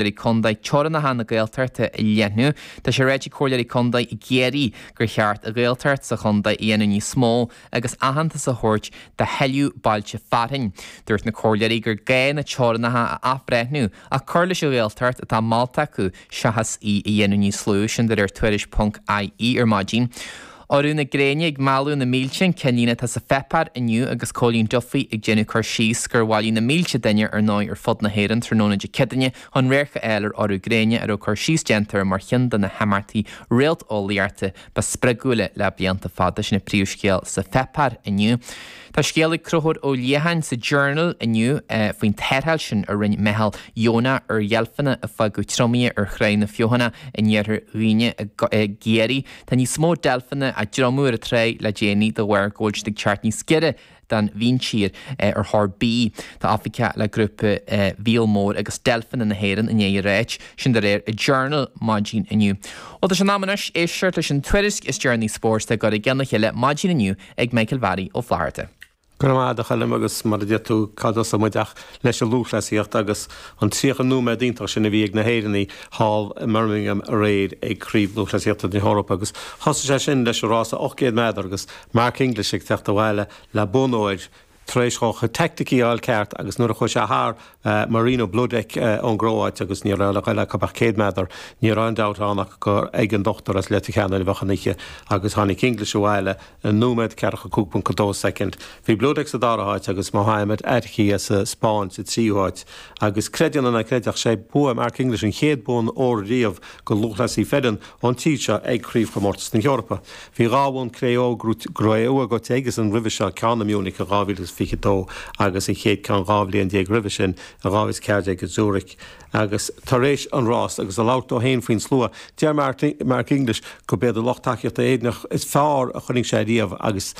Comhairleoirí Contae teorannacha na Gaeltachta a leathnú Tá sé ráite ag Comhairleoirí Contae i gCiarraí gur cheart an Ghaeltacht sa chontae a dhéanamh níos mó agus aitheantas a thabhairt do thuilleadh bailte fearainn Dúirt na Comhairleoirí gur gá na teorannacha a athbhreithniú ach cur leis an Ghaeltacht atá molta acu seachas í a dhéanamh níos lú Sin de réir Tuairisc.ie ar maidin. Urú na gréine ag mealladh na mílte an ceannlíne atá sa pháipéar inniu agus Cóilín Duffy ag déanamh cur síos gur bhailigh na mílte duine ar ndóigh ar fud na hÉireann tráthnóna Dé Céadaoine chun radharc a fháil ar urú gréine a raibh cur síos déanta air mar chionn de na himeachtaí réalteolaíochta ba spreagúla le blianta fada. Sin an príomhscéal sa pháipéar inniu. Tá scéal ag Concubhar Ó Liatháin sa Journal inniu faoin tarrtháil sin a rinne meitheal dheonach ar dheilfeanna a fágadh triomaithe ar Thráigh na Feothanaí in iarthar Dhuibhne i gCiarraí. Tá níos mó deilfeanna á dtriomú ar an dtráigh le déanaí de bharr go bhfuil siad ag teacht níos giorra don mhíntír ar thóir bídh. Tá oifigeach le grúpa Mhíol Mór agus Deilfeanna na hÉireann i ndiaidh a ráit sin de réir an Journal maidin inniu. Bhuel, tá sé in am anois éisteacht leis an tuairisc is deireanaí spóirt dá gcur i gceann a chéile maidin inniu ag Micheál Bharry Ó Flatharta. Go raibh maith agat a Choilm agus mar a deir tú, cá dtosóidh muid ach leis an lúthchleasaíocht agus an 30 nóiméad iontach sin a bhí ag na hÉireannaigh thall i mBirmingham aréir ag Craobh Lúthchleasaíochta na hEorpa agus thosaigh sé sin leis an rása 800 méadar agus Mark English ag teacht abhaile le bonn óir tar éis dhó a chuid teaicticí a fháil ceart agus nuair a chuaigh sé thar Marino Bloudek ón gCróáit agus ní raibh le ghoil acu ach céad méadar. Ní raibh aon dabht ann ach gur ag an dochtúir as Leitir Ceanainn a bheadh an oíche agus tháinig English abhaile i nóiméad 45.2 soicind. Bhí Bloudek sa dara háit agus Mohamed Attaoui as an Spáinn sa tríú háit agus creid é nó ná creid ach sé bua Mark English an chéad bhonn óir riamh do lúthchleasaí fireann ón tír seo ag Craobhchomórtas na hEorpa. Bhí dhá bhonn cré-umha buaite aigesean roimhe seo, ceann i Munich in 2022 agus an chéad ceann dhá bhliain déag roimhe sin in 2014 i Zurich. Agus tar éis an rás, agus ag labhairt dó féin faoin slua, deir Mark English gurb iad an lucht tacaíochta Éireannach is fearr a chonaic sé riamh agus,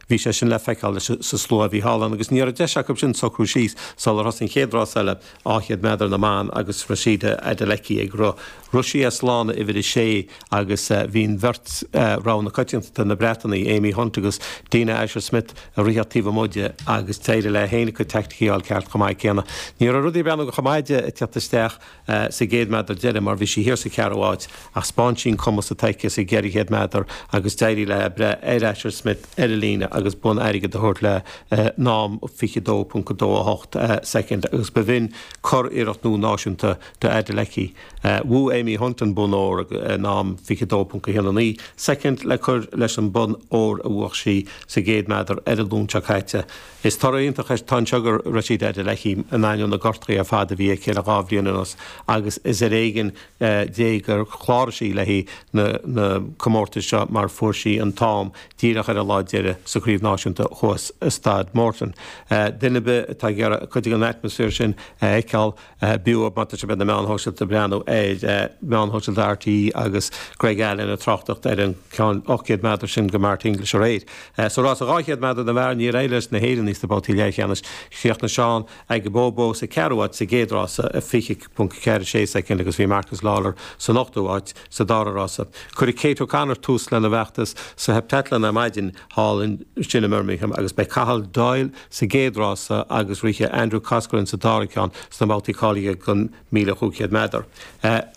Bhí sé sin le feiceáil leis an slua a bhí thall ann agus ní raibh deis acu sin socrú síos sular thosaigh an chéad rás eile, 200 méadar na mban agus Rhasidat Adeleke ag rith. Rith sí as lána uimhir a sé agus bhí an bheirt rogha na coitiantachta, na Breatanaigh, Amy Hunt agus Dina Asher Smith ag rith taobh amuigh di agus d'éirigh léi féin a cuid teaicticí a fháil ceart chomh maith céanna. Ní raibh rudaí ag breathnú chomh maith di ag teacht isteach. sa gcéad méadar deiridh mar bhí sí thiar sa cheathrú áit ach spáin sí an cumas atá aici sa gceithre chéad méadar agus d'éirigh léi breith ar Asher Smith ar an líne agus bonn airgid a thabhairt léi in am 22.28 soicind agus ba shin curiarracht nua náisiúnta do Adeleke. Bhuaigh Amy Hunt an bonn óir in am 22.19 soicind le cur leis an bonn óir a bhuach sí sa gcéad méadar ar an Luan seo caite. Is toradh iontach atá anseo do Rhasidat Adeleke, in ainneoin na ngortuithe ar fad a bhí aici le dhá bhliain anuas agus is ar éigin Dé gur chláraigh sí le haghaidh na gcomórtas seo mar fuair sí an t-am díreach ar an lá deireadh sa Chraobh Náisiúnta thuas i Staid Morton. Duine ar bith atá ag iarraidh cuid den atmaisféar sin a fheiceáil, bheadh chomh maith dóibh a bheith ar na meáin shóisialta ag breathnú ar mheáin shóisialta RTÉ agus Greg Allen ag tráchtacht ar an gceann 800 meadar sin do Mark English aréir. Sa rás 200 meadar na bhfear níor éirigh leis na hÉireannaigh sna babhtaí leathcheannais. Chríochnaigh Seán Aigboboh sa cheathrú áit sa gcéad rás, 20.46 soicind agus bhí Marcus Lawler san ochtú áit sa dara rás. Cuirfidh Kate O'Connor tús lena bhfeachtas sa Heptatlan ar maidin thall ansin i mBirmingham agus beidh Cathal Doyle, sa gcéad rása agus rithfidh Andrew Coscoran sa dara ceann sna babhtaí cáilithe don 1500 meadar.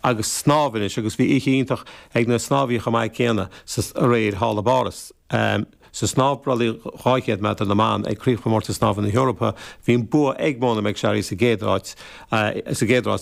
agus snámh anois agus bhí oíche iontach ag na snámhaithe chomh maith céanna sa aréir thall i bPáras. Sa snámh brollaigh 200 meadar na mban ag Craobhchomórtas Snámha na hEorpa bhí an bua ag Mona McSharry sa gcéad rás,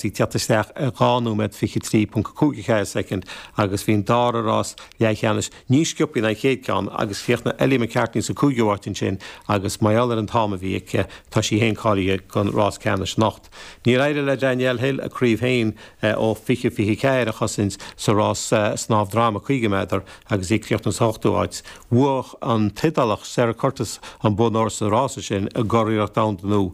í ag teacht isteach ar 2 nóiméad 23.54 soicind agus bhí an dara rás leathcheannais níos sciobthaí ná an chéad cheann agus chríochnaigh Ellie McCartney sa gcúigiú áit ansin agus mar gheall ar an t-am a bhí aici tá sí féin cáilithe don rás ceannais anocht. Níor éirigh le Danielle Hill a craobh féin ó 2024 a chosaint sa rás snámh droma 50 méadar agus í ag críochnú san ochtú áit. Bhuaigh an tIodálach Sara Curtis an bonn óir sa rása sin i gcuriarracht domhanda nua.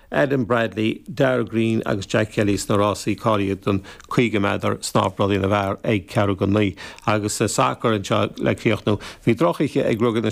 Adam Bradley, Darragh Greene agus Jack Kelly sna rásaí cáilithe don 50 meadar, snámh brollaigh na bhfear ag ceathrú go naoi agus sa sacar anseo le críochnú. Bhí drochoíche ag Ruagairí na.